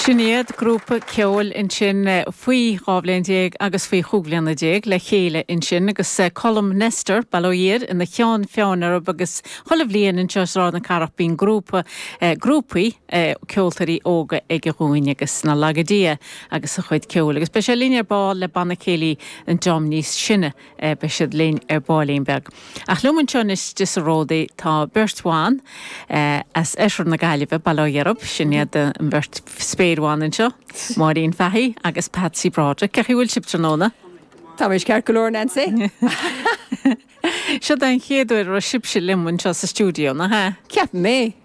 Sin iad grúpa ceoil ansin faoi dhá bhliain déag agus faoi chúig bhliana déag le chéile ansin agus Colm Nestor, bail ó Dhia air, ina cheann feadhain orthu agus chuile bhliain anseo i Sráid na Cathrach bíonn grúpa, grúpaí ceoltóirí óga aige dhúinn agus nár laga Dia é agus a chuid ceoil agus beidh sé linn ar ball le Banna Céilí an dream níos sine. Eh beidh siad linn ar baillín beag. Ach liom anseo anois do sa Ródaí tá beirt bhan, eh as oirthear na Gaillimhe, Baile Átha Dheirb, sin iad an bheirt spéirbhan anseo, Máirín Fahy agus Patsy Broderick. Cén chaoi a bhfuil sibh tráthnóna? Táimid ceart go leor Nancy. Seo é an chéad uair a raibh sibhse liom anseo sa stiúideo, nach ea? Ceapaim é.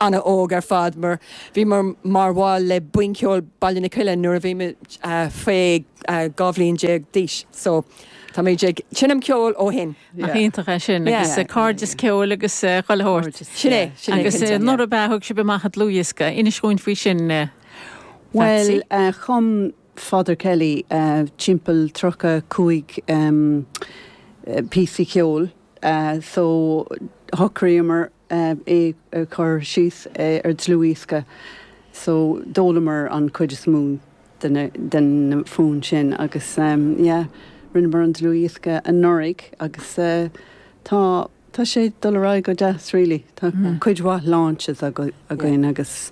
an-óg ar fad mar bhíomar mar bhaill le Buíon Cheoil Baile na Cille nuair a bhí muid faoi dhá bhliain déag d'aois so táimid ag seinm ceoil ó shin. Nach iontach é sin agus cairdeas ceoil agus chuile shórt. Sin é, sin é cinnte. Agus nuair ab ea a thug sibh amach an dlúthdhiosca, inis dhúinn faoi sin a Phatsy. Bhuel chum Father Kelly timpeall tríocha cúig píosa ceoil so shocraíomar eh, é a chur síos eh, ar dlúthdhiosca so d'fhoghlamar an chuid is mó de na, de na foinn sin agus em, yeah, rinneamar an dlúthdhiosca anuraidh agus eh, tá, tá sé ag dul ar aghaidh go deas really, tá cuid mhaith launches aga, againn agus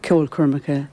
ceolchoirmeacha.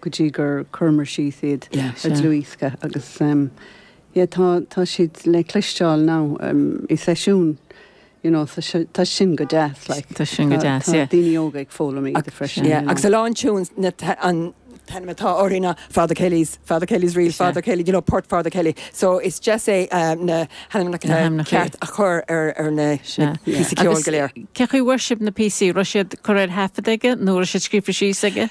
go dtí gur cuireamar síos iad ar dlúthdhiosca agus yeah tá tá siad le cloisteáil now i seisiún you know so si tá sin go deas like Tá sin go deas yeah. tá daoine óga ag foghlaim iad freisin you know. Agus a lán tunes ná an t-ainm atá orthaí ná Father Kelly's Father Kelly's Reel Father Kelly you know Port Father Kelly so is deas é na hainmneacha Na hainmneacha. ceart a chur ar ar na Sea. na píosa ceoil go léir. Cé chaoi a bhfuair sibh na píosaí? Raibh siad curtha ar taifead aige nó raibh siad scríofa síos aige?